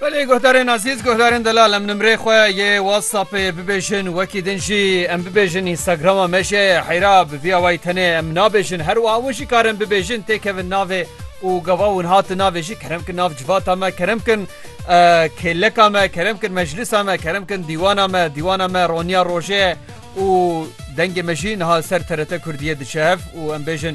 Belê guhdarên azîz guhdarên delal em nimrê xwe yê WhatsAppê bibêjin wekî din jî em bibêjin Instagrama me jê heyra bi vî awayî tenê em nabêjin her wiha û jî karin bibêjin têkevin navê û gava hûn hatin navê jî kerem kin nav civata me kerem kin kêleka me kerem kin meclisa me kerem kin dîwana me dîwana me roniya rojê û dengê me jî niha ser TRT Kurdiyê diçe hev û em bêjin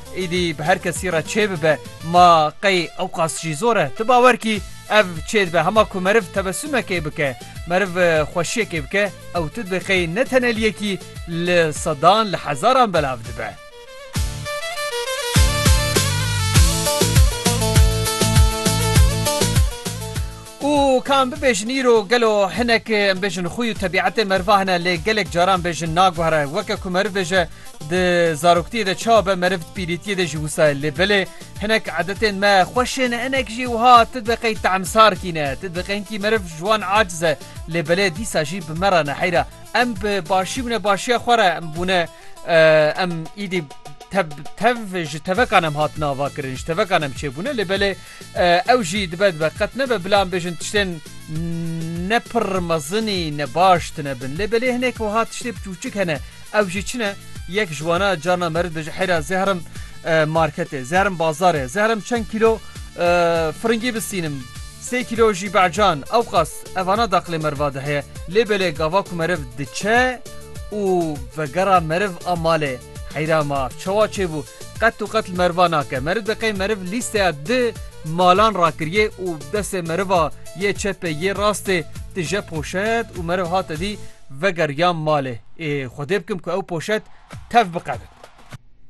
Êdî bi her kesî re çê bibe, ma qey ewqas jî zor e. Ti bawer kî ev çê dibe hema ku meriv tebesumekê bike, meriv xweşiyekê bike, ew ti dibê qey ne tenel yekî li sedan, li hezaran belav dibe. Û ka em bibêjin îro gelo hinek em bêjin xûy û tebîetê meriva hene lê gelek caran bêjin naguhere. Weke ku meriv bêje di zaroktiyê de çawa be meriv di pîrîtiyê de jî wisa ye. Lê belê hinek edetên me xweş ên e hinek jî wiha ti dibe qey taemsar kî ne. Ti dibe qey hinkî meriv ji wan aciz e. Lê belê dîsa jî bi me re ne heyra. Em bi başî bûne başiya xwe re bûne em îdî tev tev ji tevekan em hatine avakirin ji tevekan em çêbûne lê belê Ew jî dibe dibe qet nebe bila em bêjin tiştên ne pirr mezinî ne baş tine bin. Lê belê hinek wiha tiştê piçûçik hene. Ew jî çine? Yek ji wana carna meris bêje heyra zehrim marketê, zehrim bazarê, zehrim çend kîlo firingî bistînim, sê kîlo jî be'can, ewqas evana daqilê meriva de heye. Lê belê gava ku meriv diçe û vegera meriv a malê. Heyra ma, çawa çêbû? Qet û qet li meriva nake. Meriv deqê meriv lîsteya di malan rakiriyê û bi destê meriva yê çepê yê rastê tije poşet û meriv hate dî vegeriya malê. Ê xwedê bikim ku ew poşet tev biqede.